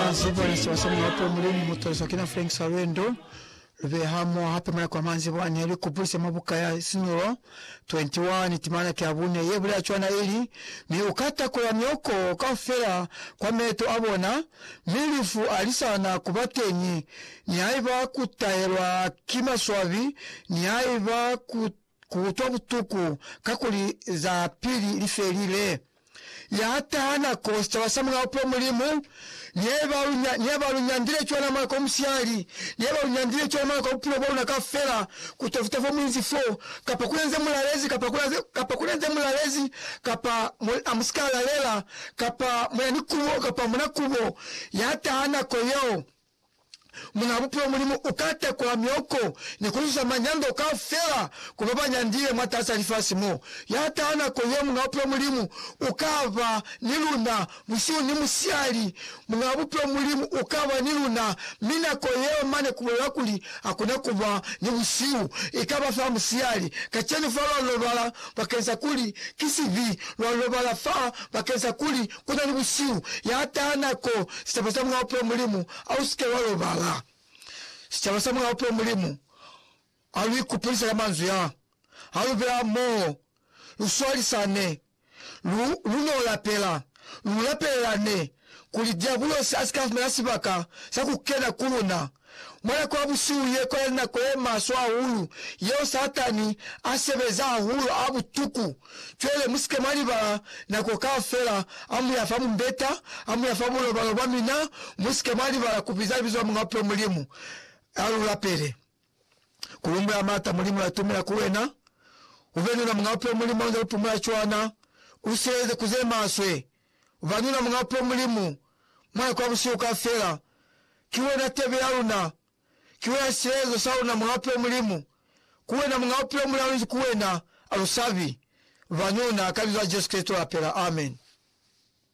Ba Zivoice ba swanela hape ho Mulimu mu taliswa kina Frank Salwendo. Lu beye hamoho hape malako a manzhi bo a ne lu kupulisa mwa buka ya Sinulo 21, timana ki ya bune, ye bulela cwana ili, Mi u ka takola mioko kaufela kwa meeto a bona, mi lufu a li sa na ku ba teñi, nihaiba ku tahelwa ki maswabi, nihaiba ku Ku utwa butuku kakuli za pili li felile. Ya taha nako sicaba sa mulao pwo Mulimu neba lu, neba lu nyandile cwana mwa nako musiyali, neba lu nyandile cwana mwa nako ya bupilo bwaluna kaufela, ku tafuta fo muinzi fo, kapa kule nze mulalezi, kapa kule, kapa kule nze mulalezi, kapa mu, a mu si ka lalela, kapa muna ni kubo, kapa muna kubo. Ya taha nako yeo. Muna Bupilo Mulimu uka tekola mioko ni kuzuza manyando kaufela ku babanyandile mwataasa lifasi mo. Yataha nako ye, Muñ'a Bupilo Mulimu ukaba ni luna busihu ni musihali. Muñ'a Bupilo Mulimu ukaba ni luna, mi nako yeo mane kubulela kuli hakuna kuba ni busihu, ikaba fa musihali. Kacenu fa lwa lobala bakeng sa kuli ki sibi, lwa lobala fa bakeng sa kuli ku na ni busihu, ya taha nako, sicaba sa Mulena Bupilo Mulimu, a u si ke wa lobala. Sicaba sa Mulena Bupilo Mulimu, ha lu ikupulisa ka manzwi a, ha lu bela hamoho, lu swalisane, lu, lu n'o lapela, lu lapelelane, kuli Diabulosi a si ka fumana sibaka sa ku kena ku luna. Mwa nako ya busihu ye kwali nako ye maswe hahulu yeo Satani a sebeza hahulu ha butuku. Cwale musike mwa libala nako kaufela ha muya fa mumbeta, ha muya fa bulobalo bwa mina, musike mwa libala kubiza libizo la Muñ'a Bupilo Mulimu, ha lu lapele. Ku lumbwela maata Mulimu latumela ku wena. Ube ni luna Muñ'a Bupilo Mulimu haunze lu pumula cwana. U sileleze ku ze maswe. Ba luna Mulapwa Mulimu, mwa kwa busihu kaufela, ki wena tebe ya luna, ki wena silelezo sa luna Mulapwa Mulimu, ku wena Muñ'a Bupilo muli aluzi ku wena, alusabi, banuna, ka Libizo la Jesu Kristo lapela. Amen.